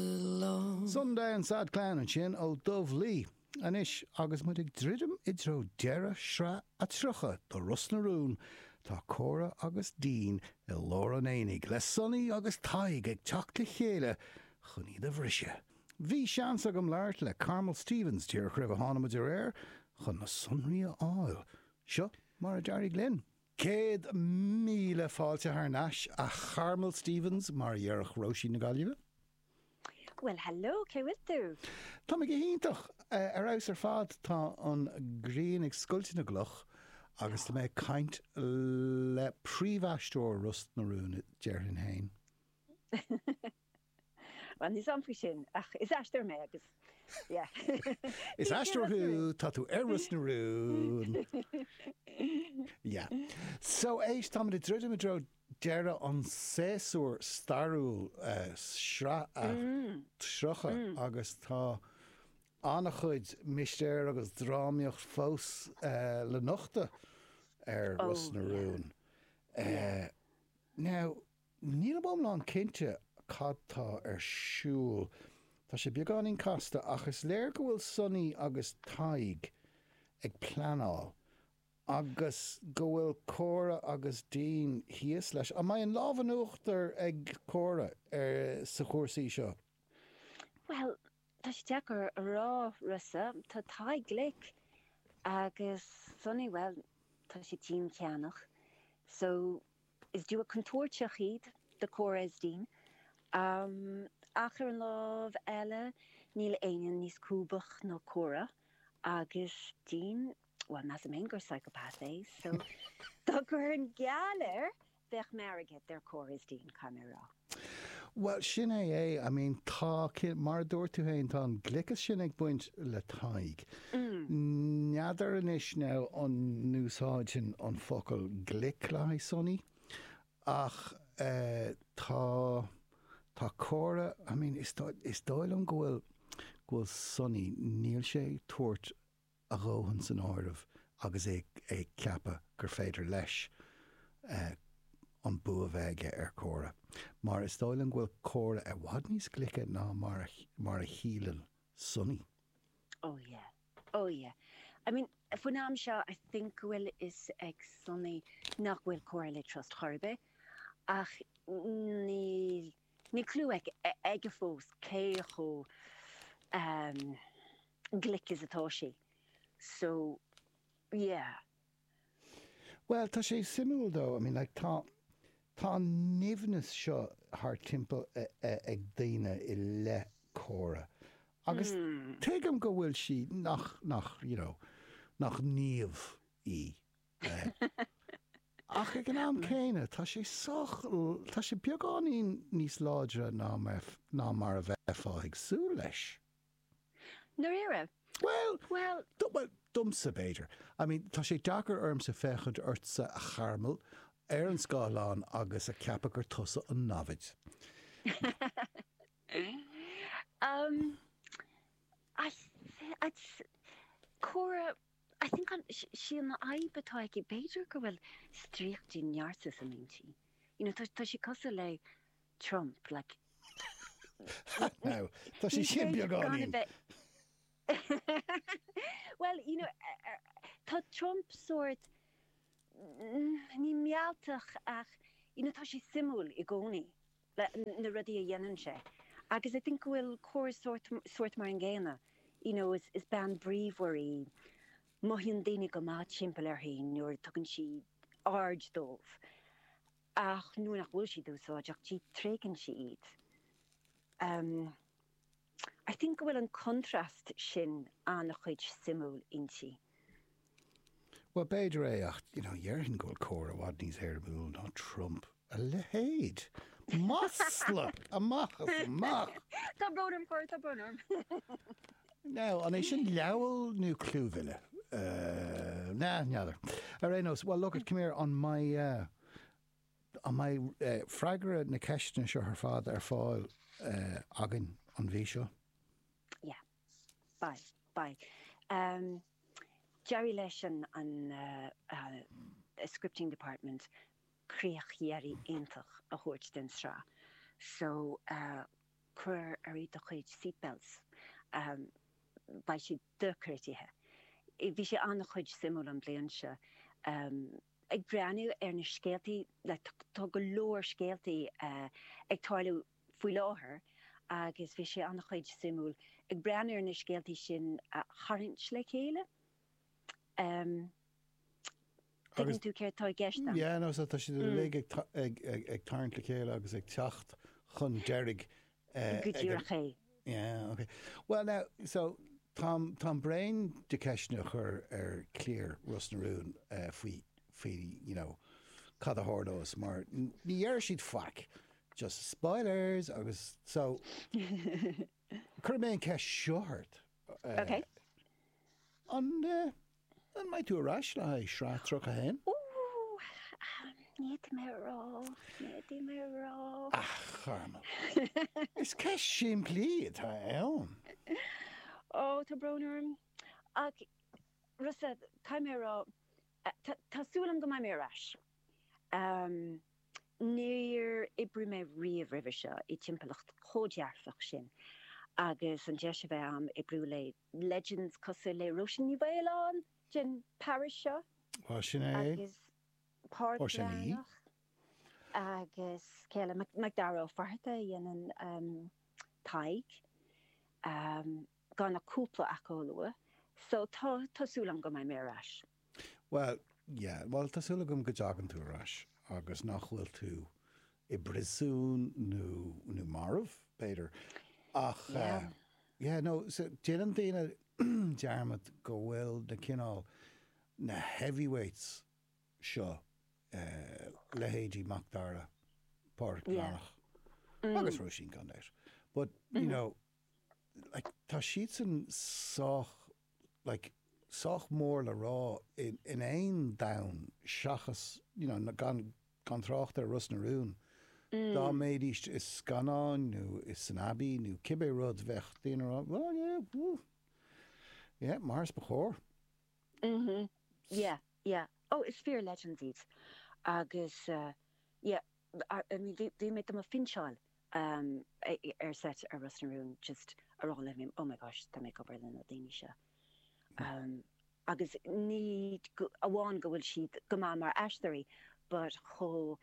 long. Sunday and Sad Clown ansin ó Dubh Lí. Anois agus muid ag druidim i dtreo deireadh shraith a 30 de Ros na Rún, tá Córa agus Dean i lár an aonaigh le Sonaí agus Tadhg ag teacht le chéile chun iad a bhriseadh. Bhí seans agam labhairt le Carmel Stephens díreach roimh a tháinig muid ar aer chun na sonraí a fháil. Seo mar a d'éirigh linn. Céad míle fáilte thar n-ais, a Charmel Stephens, mar a dhéarfadh Róisín na Gaillimhe. Bhuel, hello, cén chaoi a bhfuil tú? Tá mé go hiontach, ar fheabhas ar fad. Tá an ghrian ag scoilteadh na gcloch agus tá mé ag caint le príomhaisteoir Ros na Rún, déarfainn féin. Bhuel, níl a fhios agam faoi sin, ach is aisteoir mé agus, yeah, Is aisteoir thú, tá tú ar Ros na Rún. Yeah. So, éist, táimid ag druidim i dtreo deireadh an séasúr stairiúil, sraith a 30, agus tá an-chuid mistéir agus drámaíocht fós le nochtadh ar Ros na Rún. Now, Nílim iomlán cinnte cad tá ar siúl. Tá sé beagáinín casta, ach is léir go bhfuil Sonaí agus Tadhg ag pleanáil agus go bhfuil Córa agus Dean thíos leis. An mbeidh an lámh in uachtar ag Córa ar sa chúrsaí seo? Bhuel, tá sé deacair a rá, Rossa. Tá Tadhg glic agus Sonaí, bhuel, tá sé ceanndánach. So. Is duo contúirteach iad do Córa is Dean, ach ar an láimh eile níl éinne níos lúbaí ná Córa agus Dean, bhuel measaim fhéin gur psychopath é, so dá gcuirfinn geall air bheadh m'airgead ar Córa is Dean, caithfidh mé a rá. Bhuel, sin é é. I mean, tá, mar a dúirt tú féin, tá an gliocas sin ag baint le Tadhg. N'fheadar anois now an n-úsáidfinn an focal glic le haghaidh Sonaí ach eh tá, tá Córa, I mean, is dóigh, is dóigh liom go bhfuil, go bhfuil Sonaí, níl sé ag tabhairt a dhóthain san áireamh agus é ag ceapadh gur féidir leis an bua bheith aige ar Chóra, mar is dóigh liom go bhfuil Córa i bhfad níos glice ná mar a shíleann Sonaí. Oh yeah, oh yeah. I mean, faoin am seo I think go bhfuil fhios ag Sonaí nach bhfuil Córa le trust chor ar bith, ach níl. Níl clú aige fós cé chomh glic is atá sé, so yeah. Bhuel, tá sé suimiúil dó, I mean like tá, tá an nimhneas seo thar timpeall ag daoine i leith Cora agus tuigim go bhfuil sí, nach, nach, you know, nach naomh í. Ach ag an am céanna, tá sé sách, tá sé beagáinín níos láidre ná mar a bheifeá ag súil leis. I ndáiríre? Bhuel, Bhuel. domsa, b'fhéidir. I mean, tá sé deacair ormsa féachaint ortsa, a Charmel, ar an scáileán agus a cheapadh gur tusa an namhaid. Umm. Cora. I think gurb í an fhadhb atá aici, b'fhéidir go bhfuil stríochtaí narcissist inti, you know, tá sé cosúil le Trump, like, What now? Tá sé sin beagáinín! Well, you know, tá Trump sórt, ní mealltach ach, you know, tá sé suimiúil i gcónaí. na rudaí a dhéanann sé agus I think go bhfuil Cora sórt, sórt mar an gcéanna, you know is, is bean bríomhar í, mothaíonn daoine go maith timpeall uirthi nuair a tugann sí aird dóibh ach nuair nach bhfuil siad úsáideach di tréigeann sí iad. Um. I think go bhfuil an contrast sin an-chuid suimiúil inti. Bhuel, b'fhéidir é ach, you know, dhéarfainn go bhfuil Cora i bhfad níos éirimiúla ná Trump. A leithéid! Masla! Amach is amach! Tá brón orm, Cora, tá brón orm. Now, an é sin leabhal nó clúmhilleadh? Nah, n'fheadar. Ar aon nós, well, look it, come here, an mbeidh. An mbeidh freagra na ceisteanna seo ar fad ar fáil againn an mhí seo? Yeah. Beidh. Beidh. D'éirigh leis an scripting department críoch dheiridh iontach a thabhairt den tsraith so cuirigí oraibh do chuid seatbelts. Beidh sé dochreidte. Bhí sé an-chuid suimiúil an bliain seo. ag breathnú ar na scéaltaí, tá go leor scéaltaí ag tarlú faoi láthair agus bhí sé an-chuid suimiúil ag breathnú ar na scéaltaí sin a tharraingt le chéile. Em. Tuigeann tú céard tá i gceist agam. Yeah, no, so tá siad uilig ag tarraingt le chéile agus ag teacht chun deiridh go díreach é. Yeah, ok. Bhuel now, so, táim, táim bréan de ceisteanna a chur ar chliar Ros na Rún faoi, faoi, you know, cad a tharlóidh mar ní deir siad faic, just spoilers agus so, cuirfidh mé an ceist seo ort. Ok. An, An mbeidh tú ar ais le haghaidh sraith 31? Ní fhéadfaidh mé a rá, ní fhéadfaidh mé a rá. Ach, Carmel, is ceist shimplí atá ann. Ó, tá brón orm. Ach, Rossa, caithfidh mé a rá, tá súil agam go mbeidh mé ar ais. Níor oibrigh mé riamh roimhe seo i dtimpeallacht chomh dearfach sin agus an deis a bheith a'm oibriú le. legends cosúil le Róisín Ní Mhaoláin den parish seo agus Pádraig Breathnach agus go háirithe MacDara Ó Fatharta a dhéanann Tadhg, gan ach cúpla acu a lua. So tá súil agam go mbeidh mé ar ais. Bhuel, yeah, bhuel tá súil agam go dtagann tú ar ais agus nach bhfuil tú i bpriosún nó, nó marbh, b'fhéidir, ach eh, Yeah. yeah, no, so déanann daoine dearmad go bhfuil na cineál, na heavyweights seo, eh, leithéidí Macdara, Pádraic Yeah. Bhreathnach agus Mm. Róisín go léir, but, you know, like, tá siadsan sách like, sách mór le rá in aon domhan seachas, you know, na, gan, gan trácht ar Ros na Rún, dá mbeidís i scannáin nó i san Abbey nó cibé rud bheadh daoine a rá, well, yeah, woo, yeah, mar is ba chóir. Mm-hmm, yeah, yeah. Oh, is fíor, Legends iad agus, uh, yeah. bhí mé do mo phinseáil ar seit ar Ros na Rún just a rá le oh my gosh tá mé ag obair le na daoine seo agus ní amháin go bhfuil siad go maith mar aisteoirí but chomh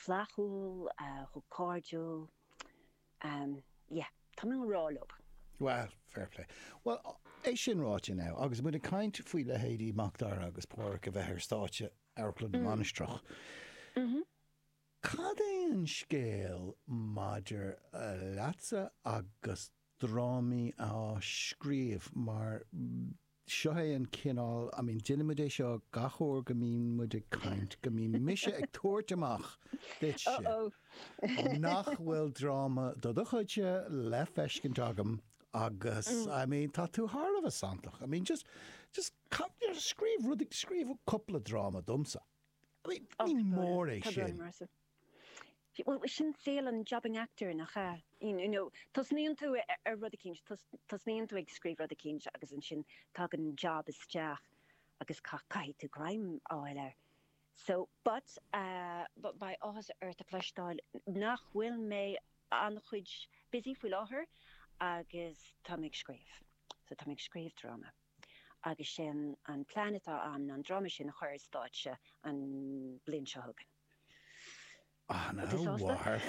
flaithiúil, chomh cairdiúil yeah tá mé i ngrá leob. Bhuel, fair play. Bhuel, é sin ráite now agus muid ag caint faoi leithéidí Macdara agus Páraic a bheith ar stáitse, Amharclann na Mainistreach. Cad é an scéal maidir leatsa agus drámaí a scríobh mar seo é an cineál, I mean déanann muid é seo gach uair go mbíonn muid ag caint, go mbíonn mise ag tabhairt amach duitse nach bhfuil dráma de do chuidse le feiscint agam agus, I mean tá tú thar a bheith santach. I mean just, just Cad deir a scríobh rud ag scríobh cupla dráma domsa. Más fíor é sin. Bhuel, sin saol an jobbing actor, nach ea? You know, tosnaíonn tú ar rud eicínt, tosnaíonn tú ag scríobh rud eicínt agus ansin tagann job isteach agus caithfidh tú greim a fháil air. So, but, beidh áthas ort a chloisteáil nach bhfuil mé an-chuid busy faoi láthair agus tá mé ag scríobh. So, tá mé ag scríobh dráma. agus sin an plean atá ann ná an dráma sin a chur ar stáitse an bhliain seo chugainn. Ana mhaith.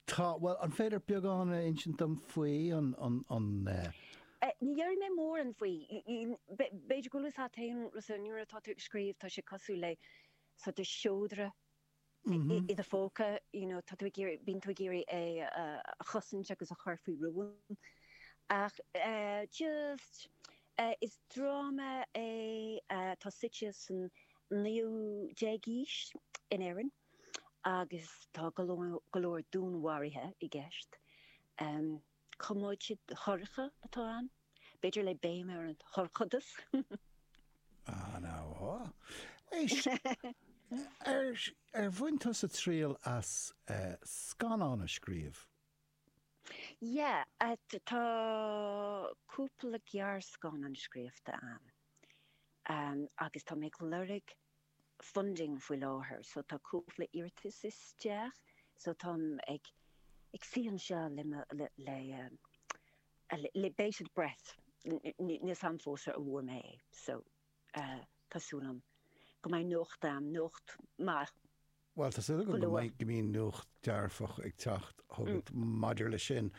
Tá, bhuel, an féidir beagán a insint dom faoi an. Ní dhéarfaidh mé mórán faoi. B'fhéidir go bhfuil fhios a't féin, Rossa, nuair atá tú ag scríobh tá sé cosúil le sort of seodra i do phóca, you know tá tú ag iarraidh, bíonn tú ag iarraidh é a chosaint agus a chur faoi rún ach just is dráma é atá suite san 19ú aois in Éirinn agus tá go leor dúnmharaithe i gceist. Coiméide dhorcha atá ann, b'fhéidir le béim ar an dhorchadas. Ah, now, oh. Éist, ar, ar bhain tusa triail as eh, scannán a scríobh? Yeah, at, tá cúpla gearrscannán scríofta a'm, em, agus tá mé ag lorg, funding faoi láthair so tá cúpla iarratas isteach so táim ag ag suí anseo le mo le le bated breath níl 's a'm fós an bhfuair mé é so tá súil a'm go mbeidh nuacht a'm nuacht maith. Bhuel, tá súil agam go mbíonn nuacht dearfach ag teacht chugat maidir leis sin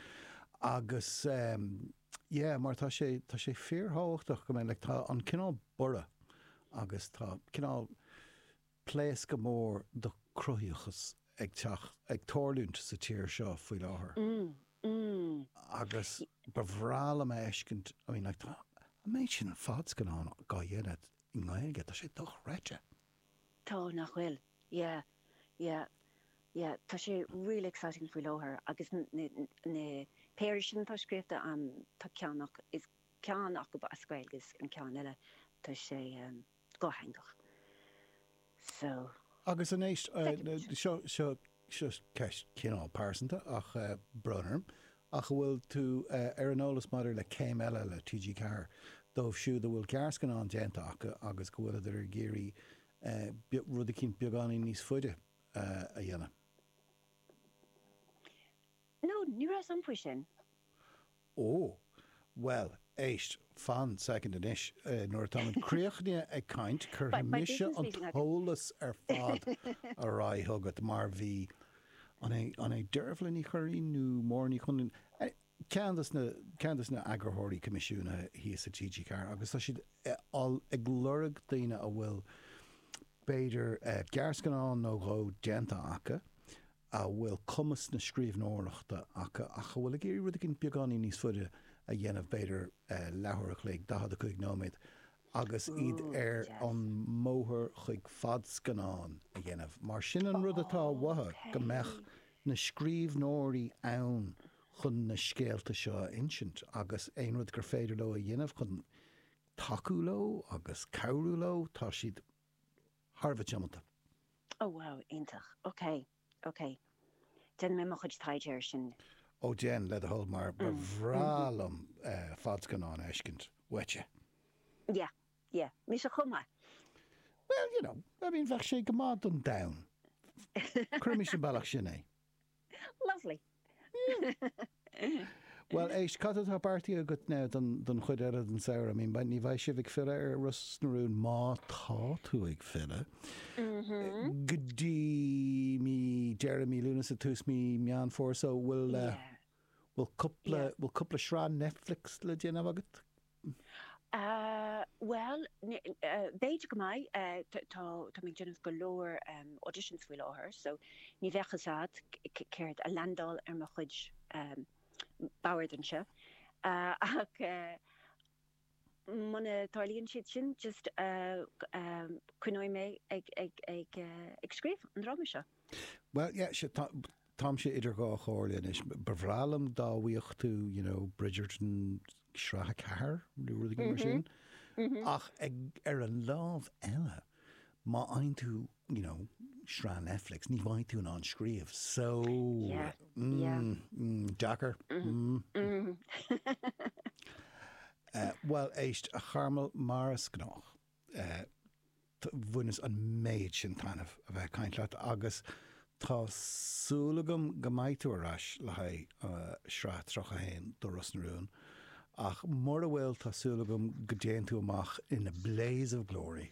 agus, yeah, mar tá sé, tá sé fíorthábhachtach go mbeidh, like, tá an cineál borradh agus tá cineál pléascadh mór do cruthaíochas ag teacht, ag tarlúint sa tír seo faoi láthair agus ba bhreá liom a fheiscint, I mean, like, tá an méid sin fadscannán á dhéanamh i nGaeilge, tá sé dochreidte. Tá, nach bhfuil? Yeah, yeah, yeah, tá sé really exciting faoi láthair agus na péire sin atá scríofa, tá ceann acu, is ceann acu as Gaeilge is an ceann eile, tá sé dhátheangach. So, Agus anois, second. seo seo ceist cineál pearsanta tá brón orm ach an bhfuil tú ar an eolas maidir le céim eile le TG4 dóibh siúd a bhfuil gearrscannán déanta acu agus go bhfuileadar ag iarraidh rud eicínt beagáinín níos faide a dhéanamh? No, ní raibh a fhios a'm faoi sin. Ó, bhuel, éist, fan second anois, nuair atá muid críochnaithe ag caint, cuirfidh mise an t-eolas ar fad ar aghaidh chugat, mar bhí, an é, an é Deirbhle Ní Churraoin nó Máire Ní Chonlúin, ceann de na, ceann de na eagarthóirí coimisiúnaithe thíos i TG Ceathair agus tá siad ag lorg daoine a bhfuil b'fhéidir gearrscannán nó dhó déanta acu, a bhfuil cumas na scríbhneoireachta acu ach a bhfuil ag iarraidh rud éigin beagáinín níos faide a dhéanamh, b'fhéidir leathuair a chloig, 45 nóiméad, agus iad ar an mbóthar chuig fadscannán a dhéanamh. Mar sin an rud atá uathu, go mbeadh na scríbhneoirí ann chun na scéalta seo a insint agus aon rud gur féidir leo a dhéanamh chun tacú leo agus cabhrú leo, tá siad. thar a bheith tiomanta. Oh wow, iontach. Ok, ok. Déanfaidh mé mo chuid taighde air sin. Ó déan, le do thoil, mar ba bhreá liom fadscannán a fheiscint uaitse. Yeah, yeah. Mise chomh maith. Well, you know, I mean, bheadh sé go maith don domhan. Cuirimis an bealach sin é. Lovely! Bhuel, éist, cad atá beartaithe agat now don chuid eile den samhradh? I mean, like, ní bheidh sibh ag filleadh ar Ros na Rún, má tá tú ag filleadh, go dtí mí, deireadh mí Lúnasa, tús mí Meán Fómhair, so, bhfuil, bhfuil cúpla, bhfuil cúpla sraith Netflix le déanamh agat? Bhuel, b'fhéidir go mbeidh. Tá, tá mé ag déanamh go leor auditions faoi láthair, so ní bheadh fhios a'd céard a leaindeáil ar mo chuid bord anseo. Ach muna dtarlaíonn siad sin, just coinneoidh mé ag, ag, ag, ag scríobh an dráma seo. Bhuel, yeah, sure, tá, Táimse idir dhá chomhairle anois. Ba bhreá liom dá bhfaigheadh tú, you know, Bridgerton sraith a ceathair nó rud éigin mar sin, ach ag, ar an lámh eile, má fhaigheann tú, you know, sraith Netflix, ní bheidh tú in ann scríobh, so, mm, deacair. Bhuel, éist, a Charmel, mar is gnách, Tá, bhaineas an méid sin taitneamh a bheith ag caint leat agus tá súil agam go mbeidh tú ar ais le haghaidh sraith 31 do Ros na Rún ach mura bhfuil tá súil agam go dtéann tú amach in a blaze of glory.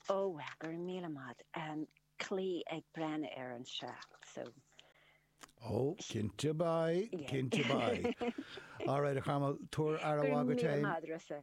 Ó, bhuel, go raibh míle maith. Caithfidh tú a bheith ag breathnú air anseo, so. Ó, cinnte beidh, cinnte beidh. Alright a Charmel, tabhair aire mhaith duit féin. Go raibh míle maith, Rossa.